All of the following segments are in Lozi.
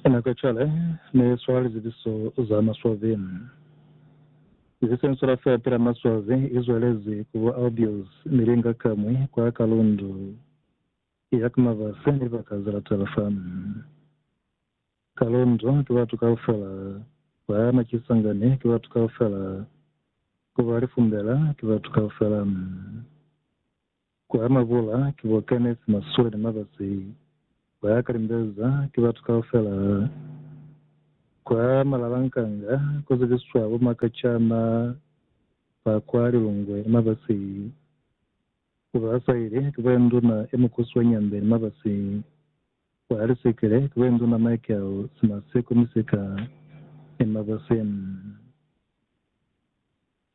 Ena ka cwale ne swala lizibiso za maswazi. Lizibiso ye swala fela pela maswazi i zwelezi ku bo Albius, Milinga ka mwi kwa Kalundu ya ku mabasi ni libaka ze latela fa Kalundu. Ki batu kaufela kwa Makisangani, ki batu kaufela ku ba Lifumbela, ki batu kaufela. Ku ama bula ki bo Kenneth Masule ni Mabasi ba ya ka limbeza ki batu kaufela. Kwa Malalankanga ku zibiswa bo makacana ba kwa Lilungwe ni Mabasi. Ku ba saile ki bo Induna e Mukusi wa Nyambe ni Mabasi. Kwa Lisekele ki bo Induna Michael Simaseko Misika ni Mabasi.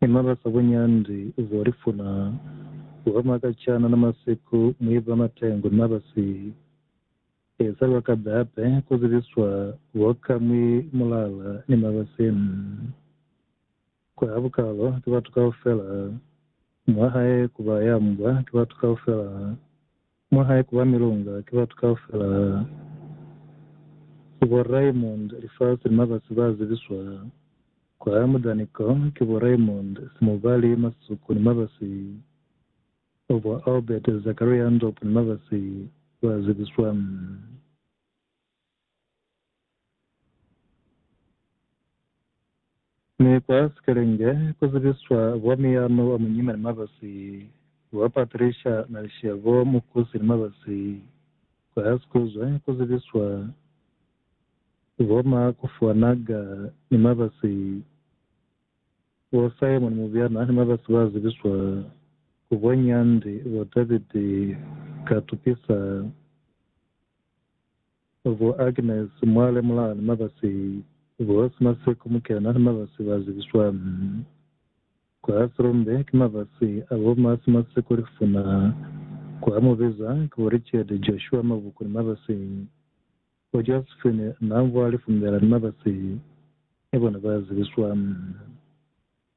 Mi mabasa buñandi bo li funa ku ba makacana na masiku mu iba matengu na ba si eza lwa ka babe ku zibiswa bo ka mwi mulala ni mabasi ni ku ha bukalo ki batu kaufela mwa hae ku ba ya mbwa ki batu kaufela Mwa hae kuba milunga ki batu kaufela ha si bo Raymond lifasi ni mabasi ba zibiswa kwa ha mudani ko ki bo Raymond Simubali Masuku ni mabasi o bo Albert Zakaria Ndopu ni mabasi ba zibiswa. Ni kwa sikelenge ku zibiswa bwa miyano wa munyina ni mabasi wa Patricia Nalishia bo mukusi ni mabasi kwa ha sikuzwe ku zibiswa bo ma kufuwa naga ni mabasi bo Simon Mubyana ni mabasi ba zibiswa ku bo Nyandi bo David Katupisa Bo Agnes Mwale Mulani Mabasi, Bohosi Maseko Mukena ni Mabasi ba zibiswa kwa Silombe ki mabasi a bo Masi Maseko Lifuna, kwa Mubiza ki bo Richard Joshua Mabuku ni Mabasi, bo Josephine Namvwa Lifumbela ni Mabasi ni bona ba zibiswa.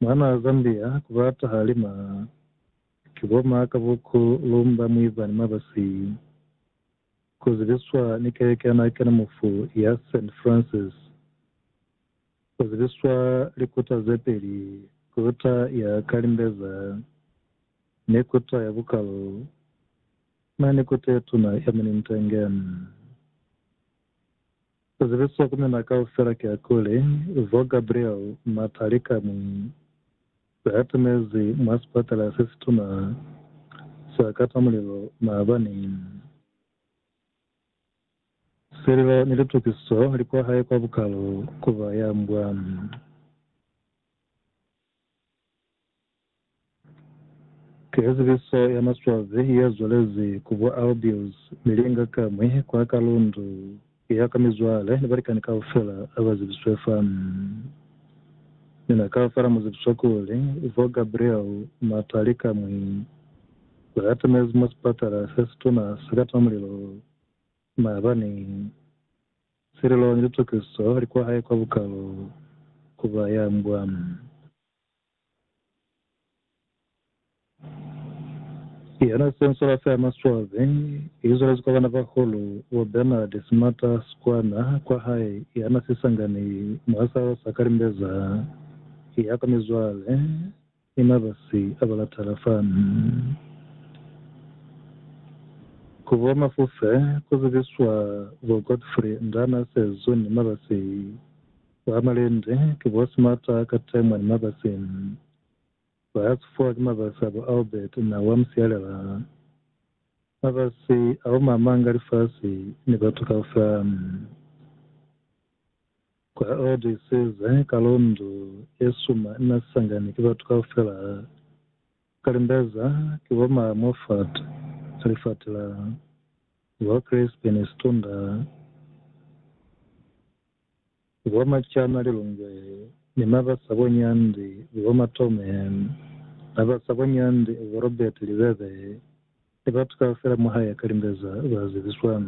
Mwana wa Zambia ku ba tahali ma ki bo ma ka bo ku lumba mwiba ni mabasi. Ku zibiswa ni keleke ya nakena mufu ya Saint Francis. Ku zibiswa likuta ze peli, kuta ya ka limbeza ni kuta ya bukalo. Na ni kuta ye tuna ya Munintenge. Ku zibiswa ku mina kaufela kiakuli, Bo Gabriel Matalikamu ba yatimezi mwa sipatala se situna sa Katamulilo maabani. Sililo ni litukiso li kwa hae kwa bukalu ku ba ya mbwa. Ki sesepiso ya maswabi ye zwalezi ku bo Albius mi linga kamwi kwa ka lundu ya ka mizwale ni balikani kaufela ba zebiswe fa. Mi na kaufela mu zebiswa kuli bo Gabriel Matali kamwi ba atamezi mwa sipatala se situna sa ka tima mulilo maabani. Sililo ni litokiso li kwa hae kwa bukalo ku ba ya mbwa. Yona Sensola Fair Maswabi i zwelezi kwa bana ba hulu wa Bernard Smata Sikwana kwa hae yana sisangani mwa salo sa Kalimbeza ya kwa mizwale ni mabasi a balatala fa ku bo Mafufe ku zibiswa bo Godfrey Ndana Sezu ni mabasi Ba malende ki bo Smarter ka Temwa ni Mabasi. Ba sufuwa ki mabasi a bo Albert na wa Musialela. Mabasi ao ma manga lifasi ni batu kaufela. Kwa Old Isize, ka lundu ye suma ina sangani ki batu kaufela. Ka Limbeza, ki bo ma Moffat, ka lifatila, ni bo Crispi ni Situndar. Zibo ma cama li lungwe, ni ma ba sa boni hande, zibo ma tome, ba ba sa boni hande, zibo Robert li bebe, ni batu kaufela mwa hae ka limbeza ba zibiswa.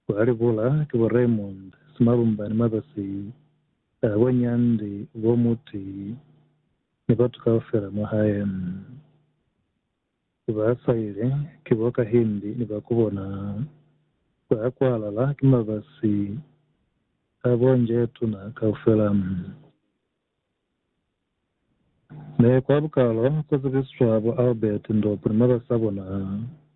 Kwa li bula, ki bo Raymond, simalumba ni mabasi, ha boni hande, zibo Muti, ni batu kaufela mwa hae. ki ba saile, ki bo kahindi ni ba kubona ba kwalala, ki mabasi a bo njeetuna kaufela. Ne kwa bukalo ku zibiswa bo Albert Ndopu ni mabasi a bona,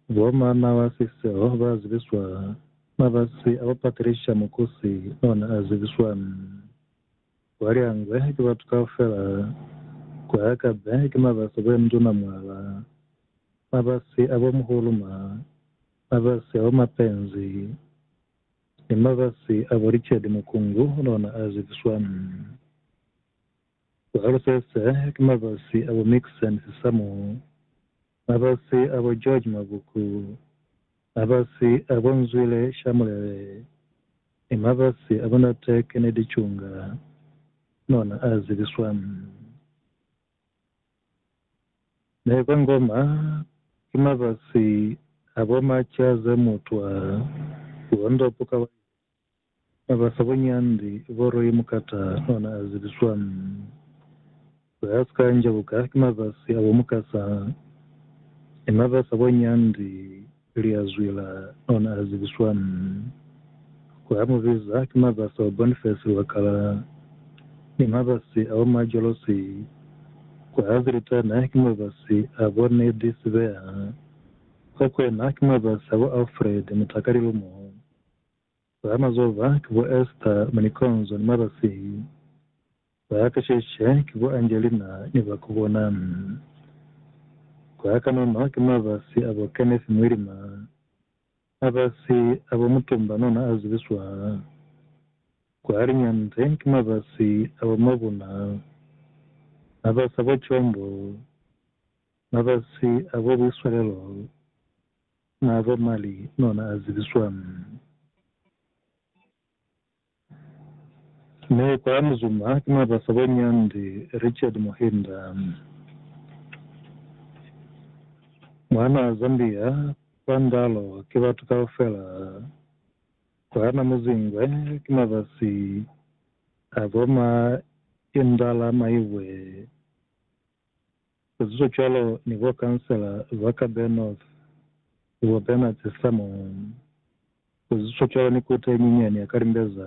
bo Manawa Siseo ba zibiswa, mabasi a bo Patricia Mukusi ona a zibiswa. Baliangwe ki batu kaufela, ku Akabe ki mabasi bo yemutuna mwala, mabasi abo muhuluma, mabasi abo mapenzi, ni mabasi abo licedi mukungu nona a zibiswa. Ku Alceste ki mabasi abo mixen sisamu. Mabasi a bo George Mabuku, mabasi a bo Nzwile Shamulele ni mabasi a bo Nate Kennedy Chunga nona a zibiswa. Ne ba ngoma ki mabasi a bo Machaze Mutwa, Luondo Pukawayo, Na ba sa boni hande, boro ye mukata ona a zibiswa. Za ha si ka njabuka ki mabasi a bo mukasa. Ni na ba sa boni hande, li a zwila, ona a zibiswa. Ku a mu biza ki mabasi a bo Boniface Lwakala, ni mabasi a bo Majolose. Ku a zilitana ki mabasi a bo Neddy Sibeha. Ko kwena ki mabasi a bo Alfred Mutakalilumo. Ba mazova ki bo Esther mwa Nikonzo ni mwa Basei. Ba ka Sheshe ki bo Angelina ni ba ku bona. Kwa kanono ki mabasi a bo Kenneth Mwilima, mabasi a bo Mutumba nona a zibiswa. Kwa liñande ki mabasi a bo Mabuna, mabasi a bo Chombo, mabasi a bo Buiswalelo. Naa fa mali nona a zibiswa Meya kwa Muzumba ki Mabasa wa Nyandi Richard Muhinda. Mwanaa Zambia kwa Ndalo ki batu kaufela. Kwa Namuzingwe ki mabasi a bo ma Indala Maibwe Kuzizwe cwalo ni bo kansela ba ka Bay North, bo Bernard Samuel. Kuzizwe cwalo ni Koti ye Nyinyani ya Kalimbeza,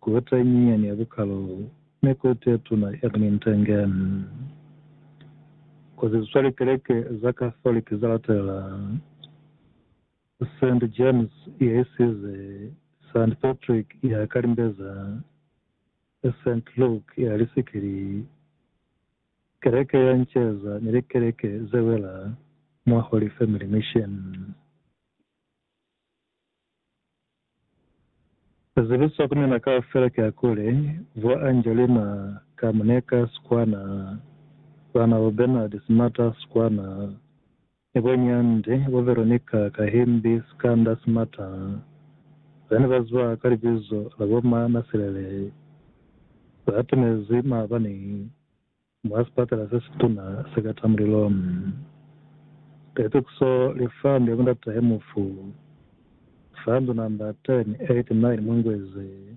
Koti ye Nyinyani ya Bukalo, ni Koti ye Tuna Ernie Ntenge. Kuzizwe likeleke za Catholic za latelela, Saint James ya Isize, Saint Patrick ya Kalimbeza, e Saint Luke ya lisikili i, Keleke ya nceza ni likeleke ze wela mwa Holy Family Mission ze zibiswa ku mina kaufela ki akule, Bo Angelina Kamneka Skwana, Bana bo Bernard Smata Skwana, Ni boni hande, bo Veronica, Kahimbi, Sikanda, Simata, ba ne ba ziba ka libizo la bo ma Nasilele, ba atomezi maabani mwa sipatela se situna se ka ta mulilo. Ka itukiso li fund ya mundatahe mufu, fund number 1089 Mungwezi,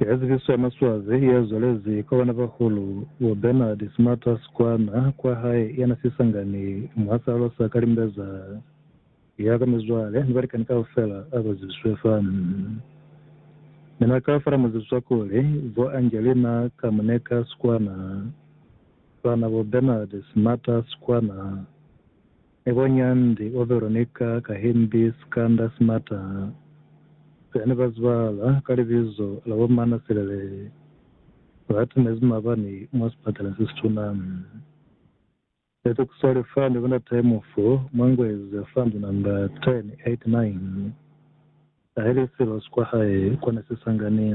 Ya zibiso ya maswabi ya zwalezi kwa bana bahulu bo Bernard Smarter Skwana kwa hae yana sisangani mwa salo sa Kalimbeza ya ka mizwale ni balikani kaufela aba zibiswe fa. Ne na ka fala muzibi zwa kuli bo Angelina Kamuneka Skwana, bana bo Bernard Smarter Skwana, Niko nyandi o Veronica ka himbi sikanda simata se ne ba zibala ka libizo la bo Mana Silele ba timezi mabani mwa sipatala se situna. Sete ku swale fa ne ku na tae mufu mwa Ngweza Fund number 1089 ka heli silo sikwa hae kwa ne si sangani.